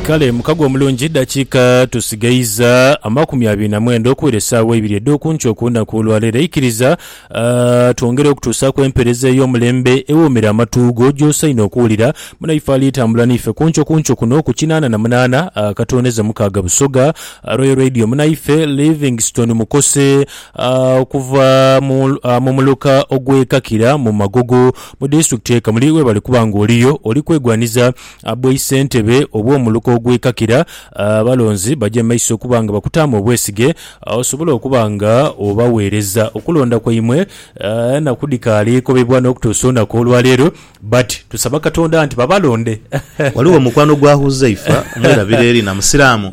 Kale mukago omulungi, edhakiika tusigaiza amakumi abiri na mwenda okuwera esaawa eibiri edh'oku nkyo ku lunaku olwa leero. Aikiriza twongere okutuusaaku empeereza ey'omulembe ewoomera amatu go gy'osaine okuwulira. Munaife alitambula n'ife ku nkyo ku nkyo kuno ku kinaana na munaana akatondeza mukaaga Busoga Royal Radio, munaife Livingstone Mukose okuva mu muluka ogw'e Kakira mu Magogo Mu disitulikiti ye Kamuli webali kuba nga oliyo oli kwegwaniza bwaisentebe obwomuluka ogwekakira, abalonzi baje mu maiso okuba nga bakutaamu obwesige osobole okuba nga obaweereza. Okulonda kwaimwe enaku dhikaali ekobebwa nokutuusa olunaku olwaleero but tusaba Katonda nti babalonde. Ghaligho mukwano gwa Huzaifa, mwerabire Lina musiramu,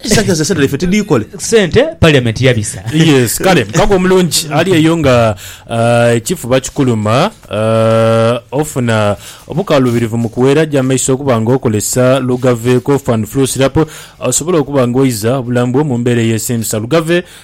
Esaga zesente ife tidikole. Sente parliament yabisa. Yes, kale mukago omulungi ali eyo nga ah, ekifuba kikuluma, ah, ofuna obukalubirivu mu kuwera, ja maiso okuba nga okozesa Lugave Cough and Flu Syrup, osobole okuba nga oiza obulamu bwo mu mbeera eyesiimisa. Lugave.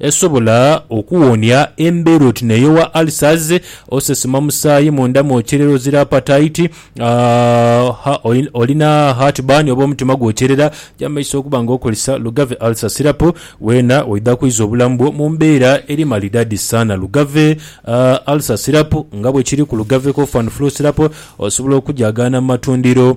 Esobola okuwonia embeera oti neyowa ulcers, osesema musaayi munda mwokyerera ozira apataiti, olina heart burn oba omutima gwokyerera, jamaiso okuba nga okozesa Lugave Ulcer Syrup weena oidha kwiza obulamu bwo mu mbeera eri malidadi saana. Lugave Ulcer Syrup nga bwekiri ku Lugave Cough and Flu Syrup osobola okujagaana mu matundiro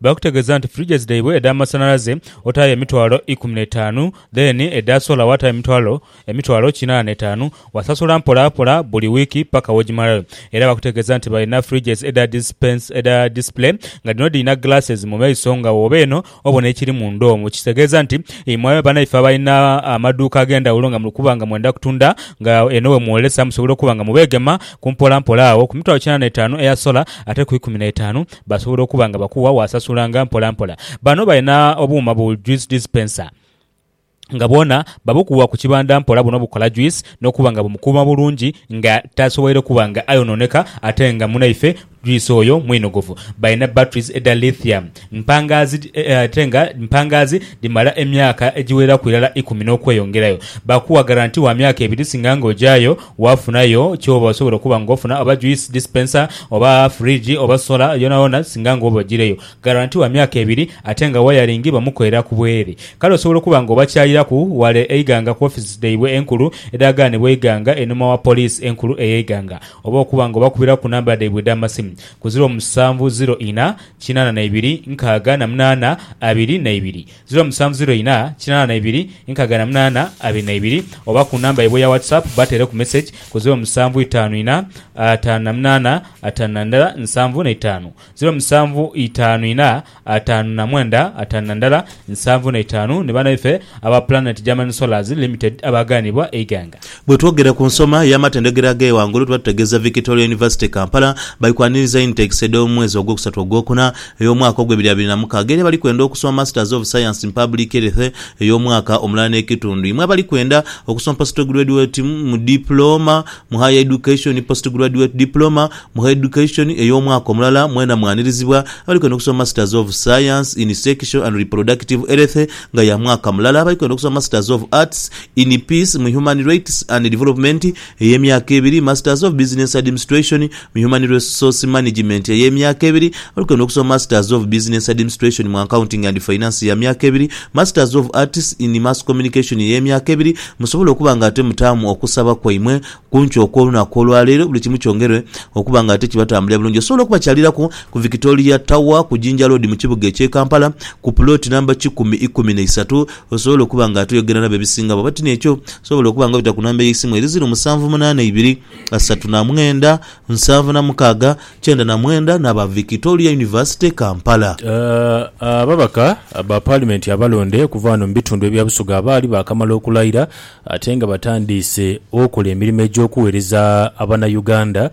Baakutegeeza nti fridges dhaibwe edh'amasanhalaze otaayo emitwalo ikumi n'etaanu, then edha solar waataayo emitwalo emitwalo kinaana n'etaanu. Wasasula mpolapola buli wiiki paka w'ogimalayo. Era baakutegeeza nti balina fridges edha dispense edha display nga dhino dhirina glasses mu maiso nga wooba eno obona ekiri munda omwo. Kitegeeza nti imwe banaife abalina amaduuka ag'endhawulo nga muli kuba nga mwenda kutunda nga eno we mwolesa musobola okuba nga mubeegema ku mpolampola agho ku mitwalo kinaana n'etaanu eya solar ate ku ikumi n'etaanu Basobola okuba nga bakuwa waasasulanga mpola mpola. Bano balina obuuma bu juice dispenser nga bwona babukuwa ku kibanda mpola buno bukola juice n'okuba nga bumukuuma bulungi nga tasoboire kuba nga ayonooneka ate nga munaife juice oyo mwinogovu. Balina batteries edha lithium mpangaazi ate nga mpangaazi dhimala emyaka egiweraku irala ikumi n'okweyongerayo. Bakuwa garanti wa myaka ebiri singa nga ogyayo Waafunayo ky'oba osobola okuba ng'ofuna oba juice dispenser oba fridge oba solar yonayona singa nga oba ojireyo. Guarantee wa myaka ebiri ate nga wayaringi bamukolera ku bwere. Kale osobola okuba nga obakyaliraku wale eighanga ku offices dhaibwe enkulu edhagaanibwa eighanga einhuma wa poliisi enkulu ey'eighanga oba okuba nga obakubira ku namba dhaibwe edh'amasimu ku ziro musanvu ziro ina kinana na ibiri nkaaga na munaana abiri na ibiri. ziro musanvu ziro inha kinana na ibiri nkaga na munana abiri na ibiri oba ku namba yaibwe eya WhatsApp batereku message ku ziro musanvu itanu inha atanu na munana atanu na ndala nsanvu na itanu, ziro musanvu itanu inha atanu na mwenda atanu na ndala nsanvu na itanu ni banaife aba Planet German Solars Limited abaaganibwa eighanga. Bwe twogera ku nsoma y'amatendhekero ag'eyo ghangulu tuba tutegeeza Victoria University Kampala. Bali kwaniriza intakes edh'omu mwezi ogwokusatu ogwokuna ey'omwaka ogw'ebiri abiri na mukaaga era bali kwenda okusoma Masters of Science in Public Health ey'omwaka omulala n'ekitundu. Imwe abali kwenda okusoma Postgraduate Diploma mu Higher Education ni Postgraduate Diploma mu Higher Education ey'omwaka omulala mwena mwanirizibwa. Abali kwenda okusoma Masters of Science in Sexual and Reproductive Health nga ya mwaka mulala, abali kwenda okusoma Masters of Arts, in Peace mu Human Rights and Development ey'emyaka ebiri, Masters of Business Admistration mu Human Resource Management ey'emyaka ebiri, abali kwenda okusoma Masters of Business Admistration mu Accounting and Finance ya myaka ebiri, Masters of Arts in Mass Communication ey'emyaka ebiri, musobola okuba nga ate mutaamu okusaba kwaimwe kunkyo okw'olunaku olwaleero buli kimu kyongerwe okuba nga ate kibatambulira bulungi. Osobola okubakyaliraku ku Victoria Tower ku Jinja Road mu kibuga eky'e Kampala ku plot namba kikumi ikumi na isatu Osobola okuba nga toyogera nabo ebisinga bwaba ti n'ekyo, sobola okuba nga obita ku namba ey'eisimu eri ziru musanvu munaana ibiri, asatu na mwenda, nsanvu na mukaaga, kyenda na mwenda n'aba Victoria University Kampala. Ababaka ba Paalimenti abalonde okuva ghano mu bitundu ebya Busoga abaali baakamala okulayira ate nga batandiise okola emirimo egy'okuweereza Abanayuganda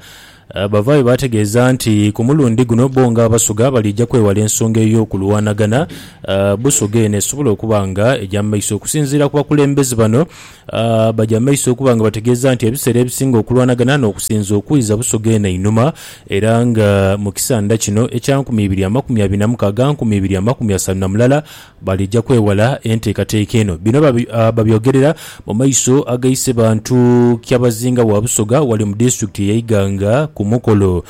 Abavaayo baategeeza nti ku mulundi guno bo nga Abasoga baliija kwewala ensonga ey'okulwanagana Busoga eno esobola okuba nga eja mu maiso. Okusinziira ku bakulembeze bano abaja mu maiso okuba nga bategeeza nti ebiseera ebisinga okulwanagana n'okusinze okwiza Busoga eno einhuma era nga mu kisanda kino ekya nkumi ibiri amakumi abiri na mukaaga nkumi ibiri amakumi asanu na mulala Balija kwewala enteekateeka eno. Bino babyogerera mu maiso aga Isebantu Kyabazinga wa Busoga ghale mu disitulikiti ye Iganga ku mukolo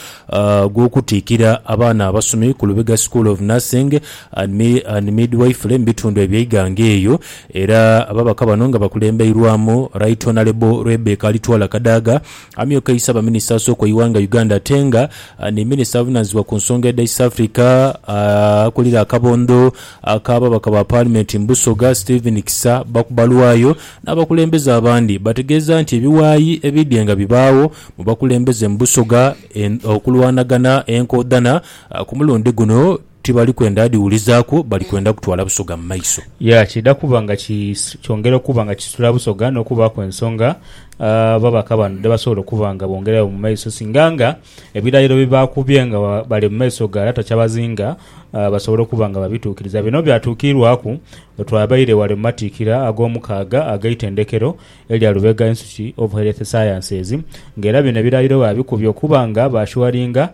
gw'okutiikira abaana abasomi ku Lubega School of Nursing and Midwifery mu bitundu ebye Iganga eyo era ababaka bano nga bakulembeirwamu Right Honourable Rebecca Alitwala Kadaga Amyuka eisa baminisita asooka eighanga Uganda atenga ni minisita avunanizibwa ku nsonga edha East Africa akulira akabondho akababaka ba paalimenti mu Busoga Stephen Kisa Bakubalwayo n'abakulembeze abandi bategeeza nti ebiwayi ebidhye nga bibaagho mu bakulembeze mu Busoga okulwanagana enkoodhana ku mulundi guno Tibali kwenda dhiwulizaaku, bali kwenda kutwala Busoga mu maiso. Ya kiidha kuba nga kyongera okuba nga kisitula Busoga n'okubaaku ensonga ababaka bano dhebasobola okuba nga bongeregho mu maiso singa nga ebirayiro byebaakubye nga bali mu maiso ga Lata Kyabazinga basobola okuba nga babituukiriza. Bino byatuukiirwaku bwetwabaire ghale mu matikkira ag'omukaaga ag'eitendekero erya Lubega Institute of Health Sciences nga era bino ebirayiro baabikubye okuba nga baashuwaringa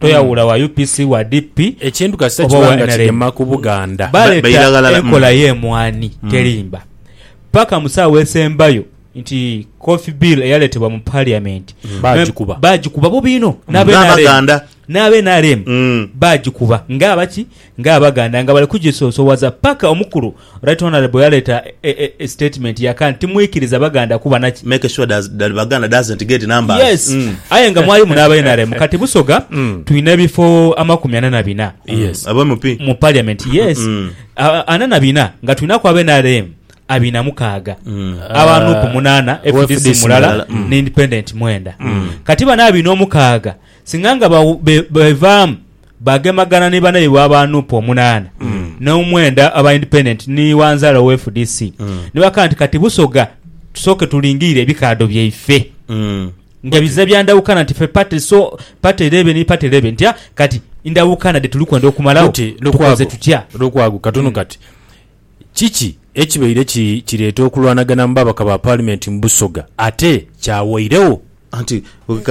toyawula wa UPC, wa DP Ekintu kasita oba kiba owa nga NRM. kigema ku Buganda. Ba- Baleta baira ghalala. enkola Mm. y'emwani terimba paka mu saawa esembayo nti coffee bill eyaletebwa mu parliament Mm. Baagikuba. baagikuba bubi inho N'Abaganda. n'abenrm Mm. baagikuba nga abaki Nga abaganda nga bali kugisoosowaza paka omukulu Right Honourable yaleeta e e e statement yaka nti timwikiriza baganda kuba na ki Make sure does that Baganda doesn't get numbers Yes mm. aye nga mwalimu n'aba nrm kati Busoga twine ebifo amakumi ana na bina Yes Aba MP mu parliament yes mm. a ana na bina nga twinaku aba nrm abina mukaaga mm. aba nup munana owa FDC FDC mulala mulala mm. ne independent mwenda kati bano abina omukaaga singa nga bawu- be- bevaamu Baagemagana ni banaibwe aba nup omunaana n'omwenda aba Independent ni Wanzala owa fdc ni bakagamba nti kati Busoga tusooke tulingirire ebikaadho byaife nga biza bya ndawukana nti ffe party so party eleebe ni party eleebe nti kati ndawukana dhe tuli kwenda okumalawo tukoze tutya. Lukwago katono kati Kiki ekibaire kireeta okulwanagana mu babaka ba paalimenti mu Busoga, ate kyawairegho? Anti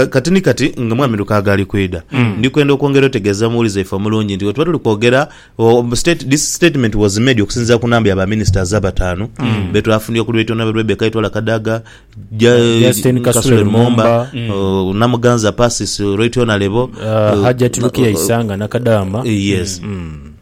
kati ni kati nga Mwami Lukaaga ali kwidha, ndi kwenda okwongera otegeeza omuwulize waife omulungi nti bwetuba tuli kwogera, This statement was made okusinziira ku namba ya ba ministers abataanu be twafunye okuli Right Honourable Rebecca Itwala Kadaga, Justine Kasule Lumumba, Namuganza Persis, Right Honourable, Hajjati Lukia Isanga Nakadaama. Yes.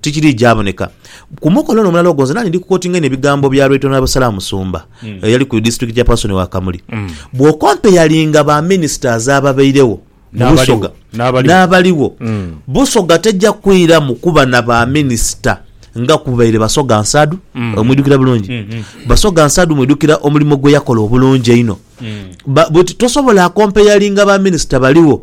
Tikiri gyaboneka ku mukolo ono omulala ogwo. Nze nali ndi ku kotinga eno ebigambo bya Right Honourable Salah Musumba eyali ku district chairperson wa Kamuli. Bwo comparinga ba ministers ababeiregho mu Busoga n'abaliwo, Busoga teja kwiramu kuba na ba minister nga kubaire Basoga Nsadu. Omwidukira bulungi? Basoga Nsadu mwidukira omulimo gweyakola obulungi einho. But tosobola comparinga ba minister baligho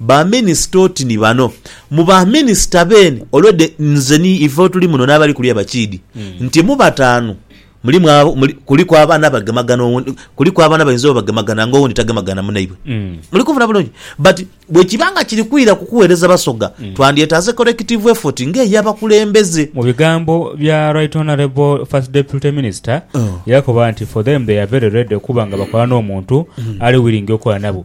Ba minisita oti ni bano mu ba minisita beene already nze ni ife otuli muno n'abali kuli abakiidi nti mu bataanu mulimu abo muli, kuliku abaana abagemagana owundi, kuliku abaana abayinza oba bagemagana nga owundi tagemagana munaibwe. Muli kunfuna bulungi? But bwe kiba nga kiri kwira ku kuweereza Basoga, twandyetaaze collective effort nga ey'abakulembeze. Mu bigambo bya Right Honourable First Deputy Minister, yakoba nti for them they are very ready okuba nga bakola n'omuntu ali willing okola nabo.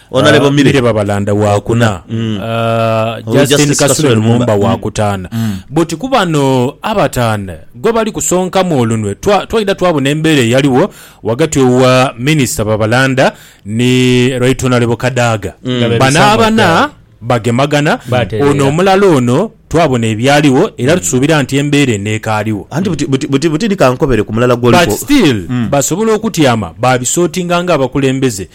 Honourable Mire. Mire Babalanda waakuna, uh, Justin Justin Kasule Kasule Lumumba Lumumba. Mm. waakutaana. Mm. But ku bano abataana gwe bali kusonkamu olunwe twa- twaidha twabona embeera eyaliwo ghagati owa Minisita Babalanda ni Right Honourable Kadaga. Mm. Nga bebisa Bano abana amataala. bagemagana Batereera. ono omulala ono twabona ebyaliwo era tusuubira nti embeera eneekaaliwo. anti buti- buti- buti- butini kankobere ku mulala but gwoliko still basobola okutyama babisotinga nga abakulembeze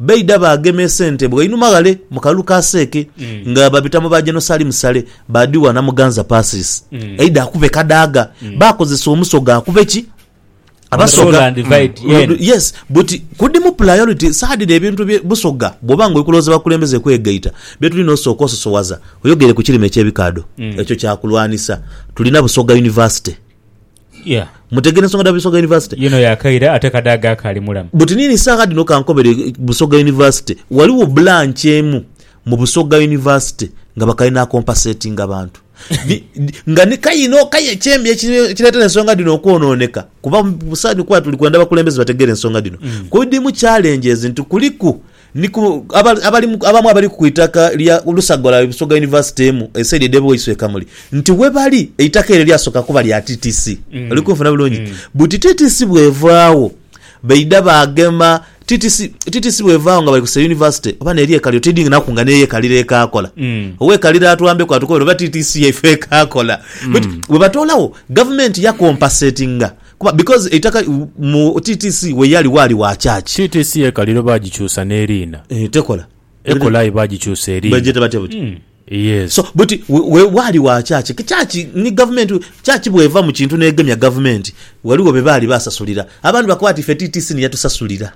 Baidha baagema esente bwainhuma ghale mu kalulu ka Seeke nga babita mu ba Jenosalimu Sale, baadhigha Namuganza Persis aidha akube Kadaga. Baakozesa Omusoga akube ki? Abasoga. Rule and divide, Mm, yen. Yes, but kudimu priority saadhira ebintu bye Busoga bwoba nga oli kulowooza bakulembeze kwegaita bye tulina osooka ososowaza oyogere ku kirime eky'ebikaadho. Ekyo kyakulwanisa. Tulina Busoga University. Yeah. Mutegeera ensonga dha Busoga University? Yino yakaire ate kade ago akaali mulamu. But nini saagha dhino kankobere eh, Busoga University. Ghaligho branch emu mu Busoga University nga bakali na compensatinga bantu. Di- di- nga ni kayina o kaye ekyembi eki- ekireetera ensonga dhino okwonooneka. Kuba mu- mu saagha dhino kuba tuli kwenda bakulembeze bategeere ensonga dhino. Kuidimu challenges nti kuliku Ni ku abali abamu abali ku itaka lya lusaga lwa Busoga University emu esaidi edh'e Bwaise e Kamuli nti ghebali eitaka eryo lyasooka kuba lya TTC. Oli kunfuna bulungi? Buti TTC bw'evaagho baidha baagema TTC, TTC bw'evaagho nga bali kusa University oba n'eri e Kaliro tidhi naku nga n'eyo e Kaliro ekaakola. Owa e Kaliro atwambeku atukobere oba TTC yaife ekaakola. But bwe batoolagho gavumenti yakompasetinga Kuba because eitaka mu TTC weyali waali wa church. TTC ye Kaliro baagikyusa n'eriina. Eeh tekola. Ekola aye baagikyusa eriina. Bagyeta batya buti? Yes. So buti we waali wa church. Church ni gavumenti, church bw'eva mu kintu n'egemya gavumenti ghaligho be baali baasasulira. Abandi bakoba nti ife TTC ni yatusasulira.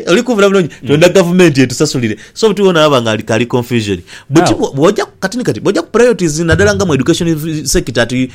Oli kunvula bulungi? Twendha gavumenti etusasulire. So buti wona aba nga kaali confusion. Buti bw'oja, kati ni kati, bw'oja ku priorities nadala nga mu education sector ati.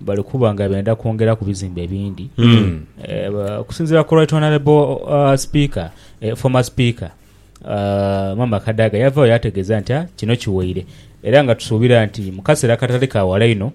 bali kuba nga benda kwongera ku bizimbe ebindi mm. eh, okusinzira ku right honorable uh, speaker eh, former speaker uh, mama kadaga yavayo yategeeza nti ah, kino kiweire era nga tusuubira nti mu kaseera katali ka wala ino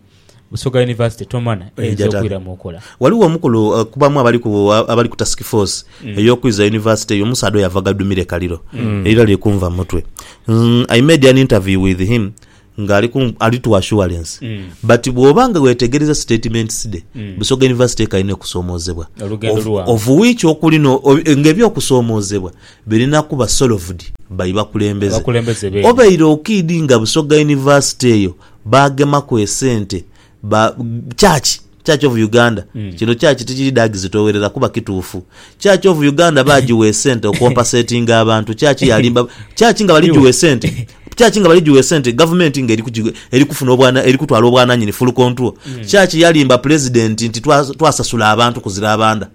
busoga university tomana eh, eyinza okwira mu nkola waliwo omukulu uh, kubamu abali ku uh, abali ku task force mm. eyokwiza university eyo omusaadha oyo yava gadumire kaliro mm. erira liri kunva mutwe mm, i made an interview with him nga ali ku ali to assurance mm. but bwoba nga wetegereza statements de mm. busoga university ekalina okusomozebwa of which okuli no nga ebyokusomozebwa birina kuba solved by bakulembeze obeire okidi nga busoga university eyo bagemaku esente ba church Church of Uganda mm. kino church tikiri dagi zitowerera kuba kituufu church of Uganda bagiwa esente okompasetinga abantu church yalimba church nga baligiwa esente church nga baligiwa esente government nga eri kufuna obwana eri kutwala obwananyini full control mm. church yalimba president nti twasasula abantu kuzira abanda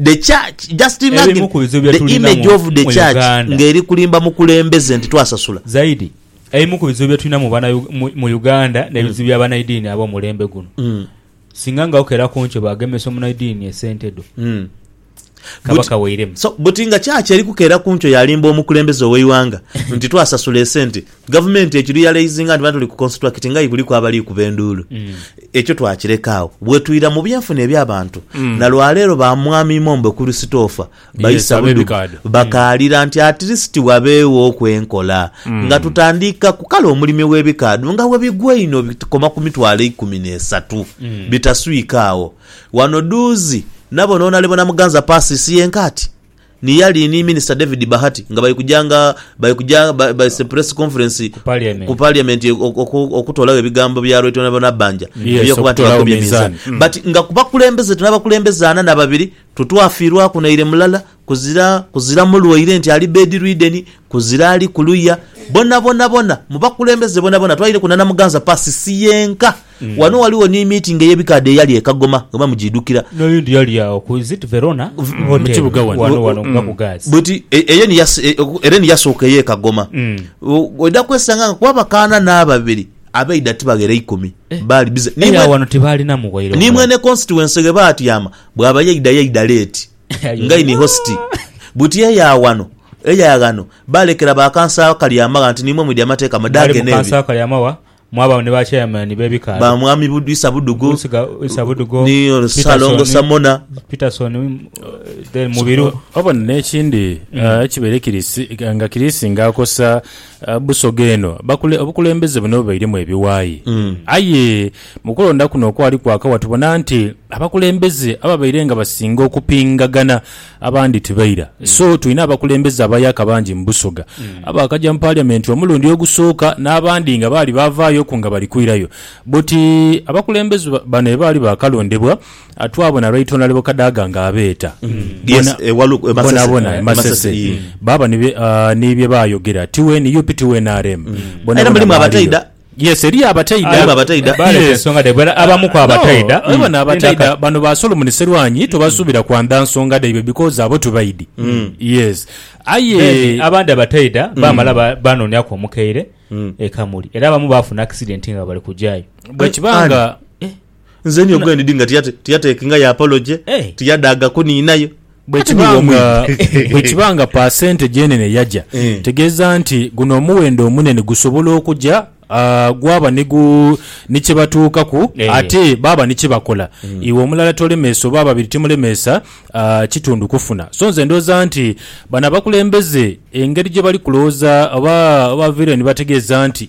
the church just imagine the image of the church nga eri kulimba mukulembeze nti twasasula zaidi Ebimu ku bizibu bye tulina mu Uganda n'ebizibu bya banaidiini ab'omulembe guno. Singa nga okera ku nkyo baagemesa omunaidiini esente dho, kaba kaweiremu. So buti nga church eri kukera ku nkyo yalimba omukulembeze ow'eighanga nti twasasula esente, gavumenti ekirealizinga nti bano tuli ku constracting aye kuliku abali kuba enduulu. Ekyo twakireka agho. Bwetwira mu byenfuna eby'abantu, na lwaleero ba Mwami Imombo Kurisitoofa Baisa budhuvu bakaalira nti atilisiti wabeewooku enkola nga tutandiika ku kale omulimi w'ebikaadho nga bwe bigwa einho bikoma ku mitwalo eikumi n'esatu bitaswika agho. Wano dhuuzi nabona Onalebona Muganza Persis yenka ati ni yali ni Minisita David Bahati nga bali kuja nga bali kuja baise Press Conference ku Parliament okutoolagho ebigambo bya Right Honourable Nabbanja eby'okuba nti bakubye minzaani but nga ku bakulembeze tuli abakulembeze ana na babiri Totwafiirwaku naire mulala, kuzira, kuzira mulwaire nti ali bedridden, kuzira ali kuluya. Bonabona bona, mu bakulembeze bonabona, twaireku na Namuganza Pass, si yenka. Wano ghaligho ni meeting ey'ebikaadha eyali e Kagoma, nga mujidhukira. N'oyundi yali agho ku, is it Verona Hotel? Wano, wano mu Kabugazi. Buti, e, eyo ni yas, e, era ni yasooka ey'e Kagoma. O, oidha kwesanga nga ku abakaana n'ababiri, abaidha tibaghera ikumi. Baali busy. Ni Aye mwe, awo wano tibaalinamu bwaire ni omulala. mwene constituency ghe baatyama, Bwaba yaidha yaidha leeti nga ini hositi. Buti eya wano, eya ghano baalekera ba kansa Kalyamagha nti niimwe mwidhi amateeka mwe Mwali mu dhaagene kansa ebyo. Kalyamagha mwabagho ni ba chairman b'ebikaali. Ba Mwami Bud- Isa Budugo Isiga- Isa Budugo, ni Peterson, Ssalongo Samona. Peterson, uh, then Mubiru. Oba n'ekindi ah, ekibaire kiri si- nga kiri singa akosa ah, Busoga eno bakule- obukulembeze buno bubairemu ebiwaayi aye Mu kulonda kuno okwali kwakawa tubona nti abakulembeze ababaire nga basinga okupingagana abandi tibaira. So tulina abakulembeze abayaka bangi mu Busoga abaakaja mu Parliament omulundi ogusooka n'abandi nga baali baavaayoku nga bali kwirayo. But abakulembeze bano ebaali baakalondebwa twabona Right Honourable Kadaga ng'abeeta bonabona e Masese baaba ni bye baayogera ti wa nup ti wa nrm bonabona baaliyo. Yes eriyo abataidha. Aye babataidha Baaleta iye. ensonga dhaibwe era abamu ku abataidha. No, bona abataidha bano ba Solomon Serwanyi tobasuubira kwandha nsonga dhaibwe because abo tubaidhi. Yes. Aye Then abandi abataidha baamala ba- baanooniaku omukeire e Kamuli era abamu baafuna accident nga bali kujaayo. bwekiba nga Nze niyo gwe ndidhi nga tiyate, tiyatekingayo apology, Hey. tiyadaaga kuniinayo. Bwe Ate kiba niiwe nga, omwidhi. bwe kiba nga pasente gyenene yaja, Eh. tegeeza nti guno omuwendo omunene gusobola okuja ah, gwaba ni gu ni kye batuukaku Eh. ate baaba ni kye bakola. Iwe omulala tolemeesa oba ababiri timulemeesa ah, kitundu kufuna. So nze ndowooza nti bano abakulembeze engeri gye bali kulowooza oba oba baviire ni bategeeza nti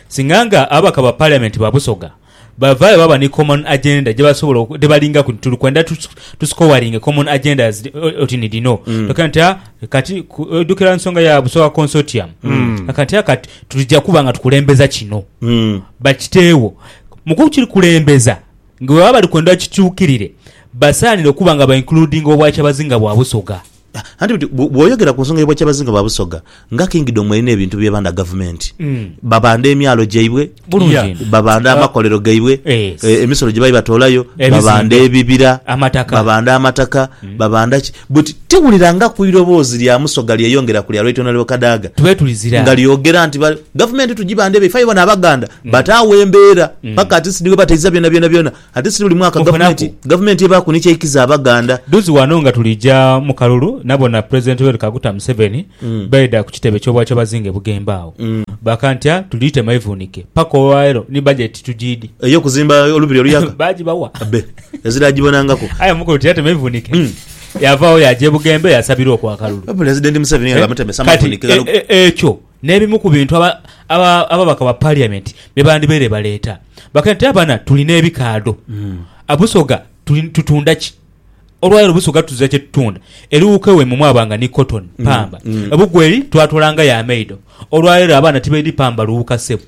Singa nga ababaka ba Parliament ba Busoga bavaayo baba ni common agenda gyebasobola ghebalingaku nti tuli kwenda tu scoring common agendas oti ni dhino tokera nti ah, kati ojjukira nsonga ya Busoga Consortium kati ah, kati tuja kuba nga tukulembeza kino bakiteewo mu kukikulembeza nga bwebaba bali kwenda kikyukirire basaanire okuba nga ba includinga Obwakyabazinga bwa Busoga. Anti buti bwoyogera ku nsonga y'obwa Kyabazinga bwa Busoga, nga Kingdom erina ebintu by'ebanda gavumenti. Mm. Babanda emyalo gyaibwe, babanda ah. amakolero gaibwe, eh, emisolo gye baali batoolayo, babanda ebibira, babanda amataka, mm. babanda ki. But tiwulira nga ku iroboozi lya Musoga lyeyongera ku lya Right Honourable Kadaga nga lyogera nti gavumenti tugibanda ebyo, ife bona Abaganda mm. bataawo embeera paka ati sidi webataiza byona byona byona. Ate si buli mwaka gavumenti gavumenti ebaaku ni ky'eikiza Abaganda. Duzi wano nga tulija mu kalulu nabona President Yoweri Kaguta Museveni baidha ku kitebe ky'Obwakyabazinga e Bugembe agho baaka ntya tuli tema ivunike paka olwaleero ni budget tujiidi. Ey'okuzimba Olubiri Oluyaga? Baagibawa. Abbe. Ezira agibonangaku. Aye omukulu tiyatema ivunike. Yavaawo yaaja e Bugembe yaasabirwa oku akalulu. Wabula Resident Museveni nga amutemesa Kati amavunike gano. e, e, ekyo. n'ebimu ku bintu ababaka ba Paliamenti bye bandibaire baleeta. Bakaira nti, Abana, tuli n'ebikaadho. Busoga, tutunda ki? Olwaira obusoga tuzira kye tutunda. Eriwuuka ewaimwe mwaba nga ni kotoni, pamba. Ebugweri twatoola nga ya maido. Olwaira abaana tibaidhi pamba luwuuka sebo.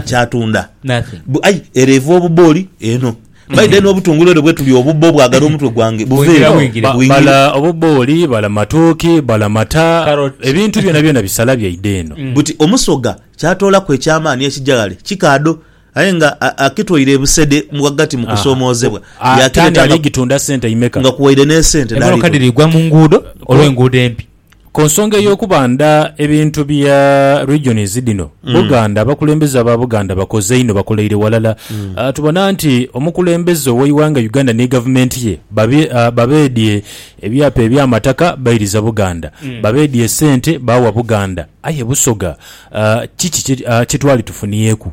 kyatunda bu ai ere eva obubbo oli eno by then obutungulu ere bwetuli obubbo bwagala omutwe gwange buveyo bwingire. Obubbo oli bala matooke bala mata ebintu byonabyona bisala byaidha eno. Buti omusoga kyatoolaku eky'amaani ekija ghale kikaadho aye nga akitoire busede mu ghagati mu kusoomoozebwa yaakireta nga kuwaire n'esente dh'aliku. Ku nsonga ey'okubanda ebintu bya regions dhino, Buganda, abakulembeze aba Buganda bakoze inho, bakoleire walala. Ah, Tubona nti omukulembeze ow'eighanga Uganda ni gavumenti ye babe- ah, babeedhie ebyapa eby'amataka bairiza Buganda, babeedhie sente baawa Buganda. Aye Busoga, ah, kiki kye ah, kye twali tufunyeeku?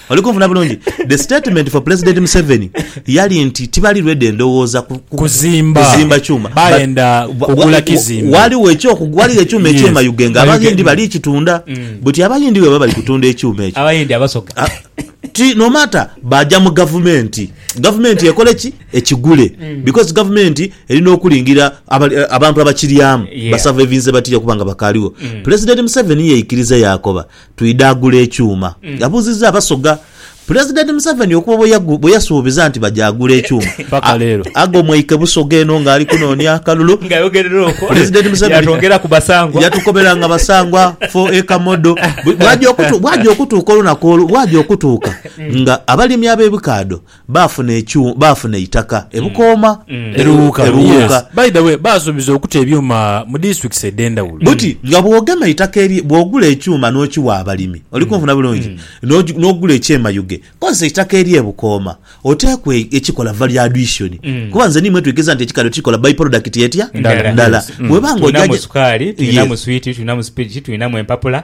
Oli kunfuna bulungi? The statement for Pulezidenti Museveni yali nti tibali ready endowooza ku, ku, Kuzimba. kuzimba kyuma. Bayenda But- wa- kugula wa- kizimbe. Waliwo ekyoku- waliwo ekyuma Yes. ekyema Ugenge, Bayuge- Abahindi bali kitunda. Buti Abahindi bwebaba bali kutunda ekyuma ekyo. Abayindi abasoga. Ah, ti no matter baja mu gavumenti gavumenti ekole ki ekigule Mm. because gavumenti erina okulingira abali- eh, abantu abakiryamu Yeah. Mm. basavevinze batya kubanga bakaliwo pulezidenti museveni yeikiriza yakoba Twidha agula ekyuma? yabuuzizza Abasoga. Pulezidenti Museveni okuva bwe yasuubiza nti baja agula ekyuma, Ago mwaike Busoga eno ng'ali kunoonia akalulu. Pulezidenti Museveni yatukobera nga basangwa four acre model. Bwaja okutuuka olunaku olwo, bwaja okutuuka nga abalimi ab'ebikaadho Baafuna ekyu, baafuna eitaka e Bukooma, e Luwuuka, Luwuuka. By the way, baasuubiza okuta ebyuma mu districts edh'endhawulo. Buti nga bw'ogema eitaka erye, bw'ogula ekyuma n'okiwa abalimi, oli kunfuna bulungi, n'ogi, n'ogula ekyemayuge, kozesa eitaka erye Bukooma, oteekwa e, ekikola value addition. Kuba nze ni imwe twikiriza nti ekikali okikola by product etya? Ndala. Ndala. Bw'oba nga oja Tulinamu gya, sukaali, tulinamu yes. swiiti, tulinamu sipiriti, tulinamu empapula,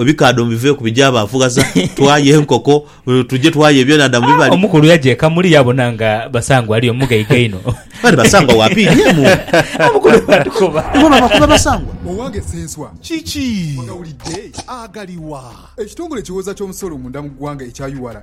Ebikaadho mubiveeku bije abaafughaza twaye enkoko tuje twaye ebyenhandha mu bibali. Omukulu yaja eka muli yaabona nga Basangwa ali omu ghaiga inho. Kale Basangwa wa piini emu. Omukulu bwatukoba. Ibo babakoba Basangwa. Owange Ssenswa, kiki? Ogawulidde? Agaliwa? Ekitongole ekiwooza ky'omusolo munda mu ggwanga ekya ura